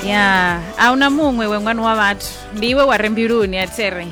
ya a una muṅwe we ṅwana wa vhathu ndi iwe wa re mbiluni a tere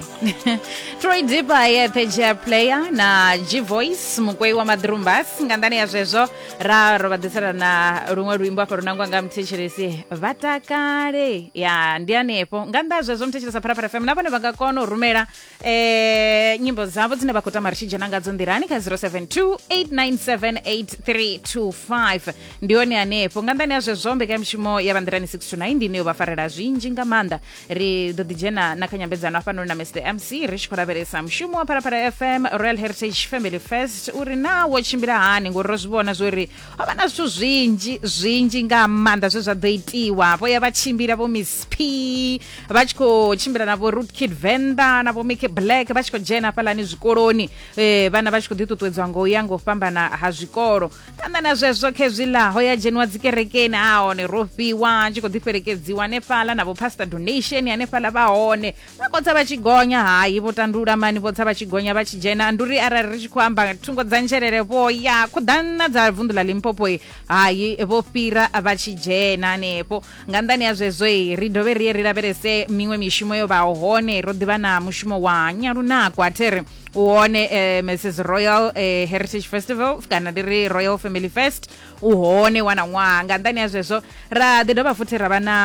troy dipa yeṱhe jea player na g voice mukwei wa maḓrumbas nga nḓani ya zwezwo ra ro vha ḓisela na luṅwe luimbo afha lunangwa nga muthetshelesi vha takale ya ndi hanefho nga nnḓa ha zwezwo muthetshelesa pharapara fm na vhone vha nga kona u rumela eh, nyimbo dzavo dzine vha khou tama ri tshi dzhena ngadzo nḓilani kha 0728978325 ndi hone hanefho nga nḓani ya zwezwo mbekanyamushumo ya vhanḓilani 6 to 9 ndi ine yo vha farela zwinzhi nga maanḓa ri ḓo ḓi dzhena na kha nyambedzano hafhanoni na mr mc ri tshi khou lavhelesa mushumo wa phalaphala fm royal heritage family fest uri naa wo tshimbila hani ngori ro zwi vhona zwori ho vha na zwithu zwinzhi zwinzhi nga maanḓa zwe zwa ḓo itiwa vho ya vha tshimbila vho miss p vha tshi khou tshimbila na vho root kid venda na vho mike black vha tshi khou dzhena hafhalani zwikoloni eh, vhana vha tshi khou ḓiṱuṱuwedzwa ngo ya ngo fhambana ha zwikolo phanḓa na zwezwo khezwiḽa ho ya dzheniwa dzikerekeni a hone ro fhiwa tshi khou ḓifhelekedziwa hanefhaḽa na vho pastor donation hanefhaḽa vha hone vha khotsa vha tshi gonya hayi vho tandula mani vho tsa vha tshi gonya vha tshi dzhena ndi uri arali ri tshi khou amba thungo dza ntshelele vho ya khuḓana dza vunḓu ḽa limpopo hayi vho fhira vha tshi dzhena hanefho nga nḓani ya zwezwo ri dovhe ri ye ri lavhelese miṅwe mishumo yo vhaho hone ro ḓivha na mushumo wa nyalunako a thiri u hone eh, mrs royal eh, heritage festival kana ndi ri royal family fest u hone wana ṅwaha nga nḓani ya zwezwo ra ḓi dovha futhi ra vha na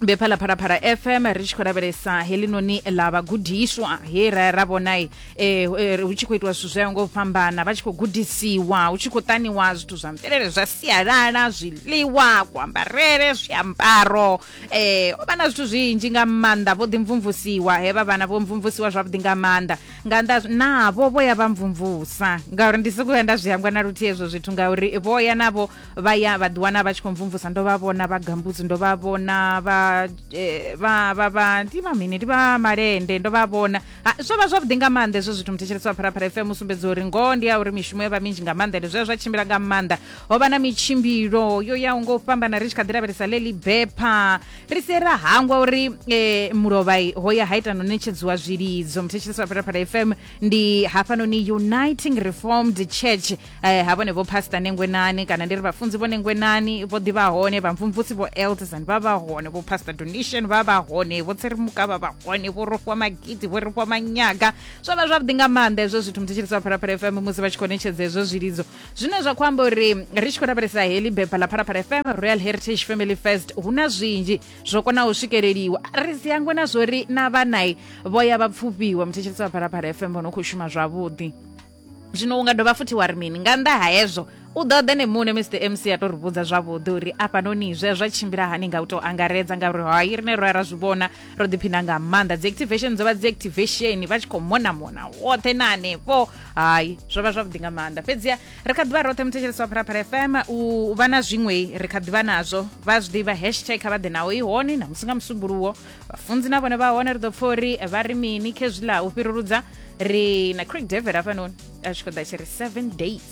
be phala phalaphala fm ri tshi khou lavhelesa helinoni ḽa vhagudiswa he ra ra vhona eh, eh, hu tshi khou itiwa zwithu zwayo ngo fhambana vha tshi khou gudisiwa hu tshi khou taniwa zwithu zwa mvelele zwa sialala zwiḽiwa kuambarele zwiambaro um o vha na zwithu zwinzhi nga maanḓa vho ḓimvumvusiwa he vha vhana vho mvumvusiwa zwavhuḓi nga maanḓa nga nnḓa navho vho ya vha mvumvusa ngauri ndi sokou ya nda zwi hangwa na luthihi hezwo zwithu ngauri vho ya navho vha ya vha ḓiwana vha tshi khou mvumvusa ndo vha vhona vha gambudzi ndo vha vhona vha eh, vha vha vha ndi vha mini ndi vha malende ndo vha vhona Ha, zwo vha zwavhuḓi nga maanḓa hezwo zwithu muthetshelesi wa pharapara fm usumbedza uri ngoho ndi ya uri mishumo yo vha minzhi nga maanḓa ende zwo ya zwa tshimbila nga maanḓa ho vha na mitshimbilo yo yaho nga u fhambana ri tshi kha ḓi lavhelesa ḽeḽi bepha ri sie ra hangwa uri eh, mulovhai ho ya ha ita no netshedziwa zwilidzo muthetshelesi wa pharapara fm ndi hafhanoni uniting reformed church eh, ha vhone vho pastor nengwenani kana ndi ri vhafunzi vho nengwenani vho ḓivha hone vhamvumvusi vho eldesan vha vha hone vho pastor donation vha vha hone vho tserimuka vha vha hone vho rofhiwa magidi vho rofhiwa manyaga zwo vha zwavhuḓi nga maanḓa hezwo zwithu musi tshilisa phalaphala fm musi vha tshi khou netshedza hezwo zwilidzo zwine zwa khou amba uri ri tshi khou lavhelesa heḽi bepha ḽa phalaphala fm royal heritage family first hu na zwinzhi zwo konaho u swikeleliwa ri si hangwe na zwori na vhanai vho ya vha pfufhiwa muthetshelisi wa phalaphala fm vho no khou shuma zwavhuḓi zwino u nga dovha futhi wa ri mini nga nnḓa ha hezwo u ḓo ḓe ne muṋe mr mc a tou ri vhudza zwavhuḓi uri afhanoni zwe zwa tshimbila hani nga u tou angaredza ngauri hai rine ro ya ra zwi vhona ro ḓiphina nga maanḓa dzi activation dzo vha dzi activation vha tshi khou mona mona woṱhe na hanefho hai zwo vha zwavhuḓi nga maanḓa fhedzia ri kha ḓivha roṱhe muthetshelesi wa phalaphala fm u vha na zwiṅwe ri kha ḓivha nazwo vha zwi ḓivha hashtag kha vha ḓe naho i hone na musi nga musumbuluwo vhafunzi na vhone vha hone ri ḓo pfa uri vha ri mini khezwiḽa u fhiruludza ri na craig david hafhanoni a tshi khou ḓa tshi ri seven days